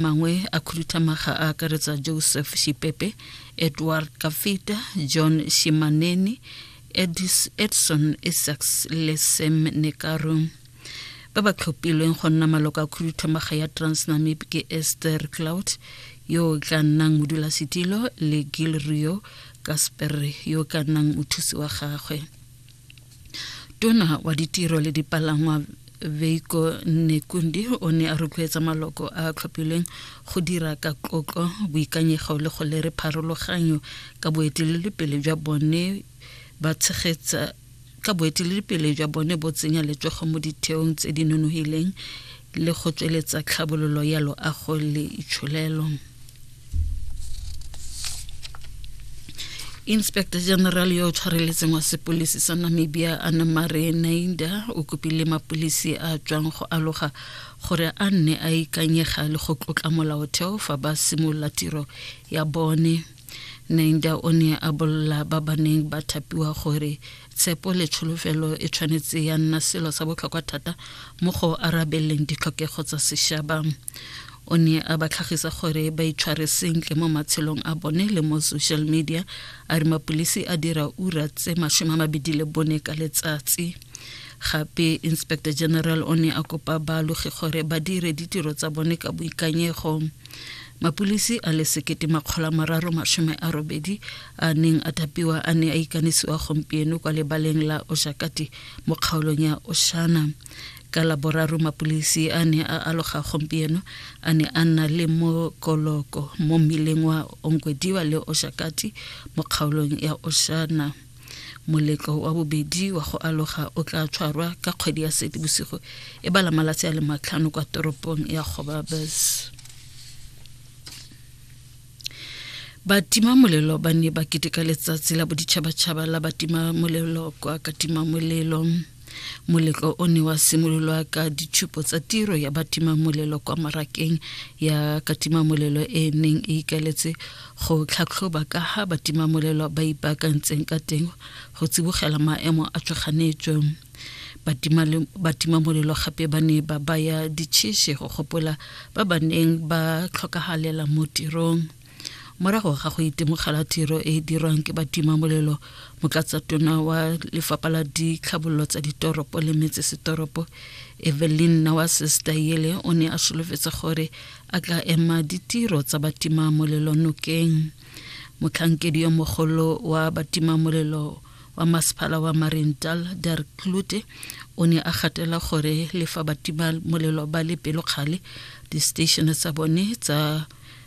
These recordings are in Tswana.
mangwe a khuduthamaga a akaretsa joseph shipepe edward kafita john shimaneni Edis, edson isax le sam nekaro ba ba tlhophilweng go nna maloko a khuduthamaga ya transnamib ke esther cloud yo o tla nnang modulasetilo le gil rio kasper yo o ka nnang mothusi wa gagwe tona wa ditiro le dipalangwa veiko nekundi o ne a rotloetsa maloko a a tlhophilweng go dira ka tlotlo boikanyego le go lere pharologanyo ka boeteledipele jwa bone ba tshegetsa ka boeteledipele jwa bone bo tsenya letsogo mo ditheong tse di nonogileng le go tsweletsa tlhabololo ya loago le itsholelo inspector general yo o tshwareletseng wa sepolisi sa namibia anamare nainda o kopile mapolisi a tswang go aloga gore a nne a ikanyega le go tlotla molaotheo fa ba simolola tiro ya bone Nainda o ne a bolla ba ba neng ba thapiwa gore tshepo le tsholofelo e tshwanetse ya nna selo sa botlhokwa thata mo go arabeleng ditlhokego tsa sešaba o ne a ba tlhagisa gore ba itshware sentle mo matshelong a bone le mo social media a re mapodisi a dira ura tse masome a mabedi le bone ka letsatsi gape inspector general o ne a kopa baalogi gore ba dire ditiro tsa bone ka boikanyego mapulisi a le sekete makgolo a mararo masome a robedi a neng a thapiwa a ne a ikanisiwa gompieno kwa lebaleng la oshakati mo kgaolong ya oshana ka laboraro mapulisi a ne a aloga gompieno a ne a nna le mokoloko mo mmileng wa onkwediwa le oshakati mo kgaolong ya oshana Moletlo wa bobedi wa go aloga o tla tshwarwa ka kgwedi ya Seetebosigo e bala malatsi a le matlhano kwa toropong ya Gobabes. Batimamolelo ba ne ba keteka letsatsi la boditšhabatšhaba la batimamolelo kwa Katimamolelo. moletlo o ne wa simololwa ka ditshupo tsa tiro ya batimamolelo kwa marakeng ya katimamolelo e e neng e ikaletse go tlhatlhoba ka ga batimamolelo ba ipaakantseng ka teng go tsibogela maemo a tshwaganetsweng batimamolelo gape ba ne ba baya ditšheshe go gopola ba ba neng ba tlhokagalela mo tirong morago ga go itemogela tiro e e dirwang ke batimamolelo motlatsatona wa lefapha la ditlhabololo tsa ditoropo le metsesetoropo evelyn nawasestayele o ne a solofetsa gore a tla ema ditiro tsa batimamolelo nokeng motlhankedi yo mogolo wa batimamolelo wa masepala wa marintal der klute o ne a gatela gore le fa batimamolelo ba le pelokgale di-station tsa bone tsa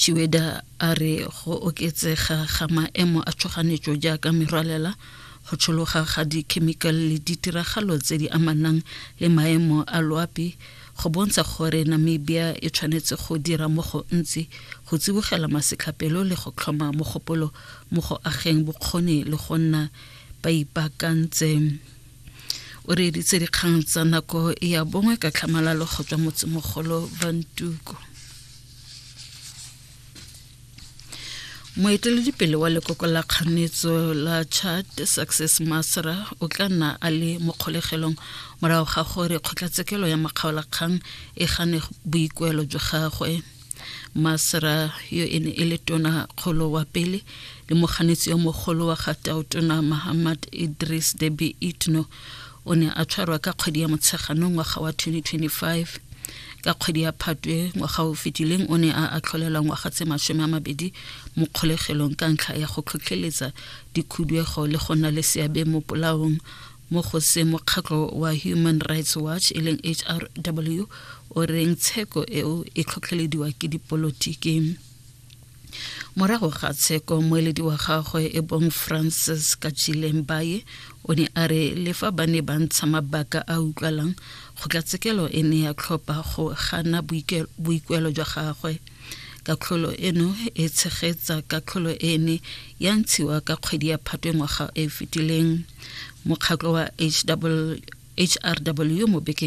Shiweda a re go oketsega ga maemo a tshoganetso jaaka merwalela go tshologa ga dikhemikale le ditiragalo tse di amanang le maemo a loapi go bontsha gore Namibia e tshwanetse go dira mo go ntsi go tsibogela masetlhapelo le go tlhoma mogopolo mo go ageng bokgoni le go nna ba ipaakantseng. o reeditse dikgang tsa nako ya bongwe ka tlhamalalo go tswa motsemogolo bantuko moeteledipele wa lekoko la kganetso la chad success masra o tla nna a le mo kgolegelong morago ga gore kgotlatshekelo ya makgaolakgang e gane boikuelo jwa gagwe masra yo e ne e le tona kgolo wa pele le moganetsi yo mogolo wa ga taotona mahamad idris debi itno o ne a tshwarwa ka kgwedi ya motsheganong ngwaga wa 2025 ka kgwedi ya phatwe ngwaga o fetileng o ne a atlholela ngwaga tse masome a mabedi mo kgolegelong ka ntlha ya go tlhotlheletsa dikhuduego le go nna le seabe mo polaong mo go se mokgatlho wa human rights watch e leng hrw o reng tsheko eo e tlhotlhelediwa ke dipolotiki morago ga tsheko moeledi wa gagwe e bong francis kachileng baye o ne a re le fa ba ne ba ntsha mabaka a utlwalang kgotlatshekelo e ne ya tlhopha go gana boikuelo jwa gagwe Katlholo eno e tshegetsa katlholo e ne ya ntshiwa ka kgwedi ya phatwe ngwaga e fetileng mokgatlho wa HW, HRW mo bekeng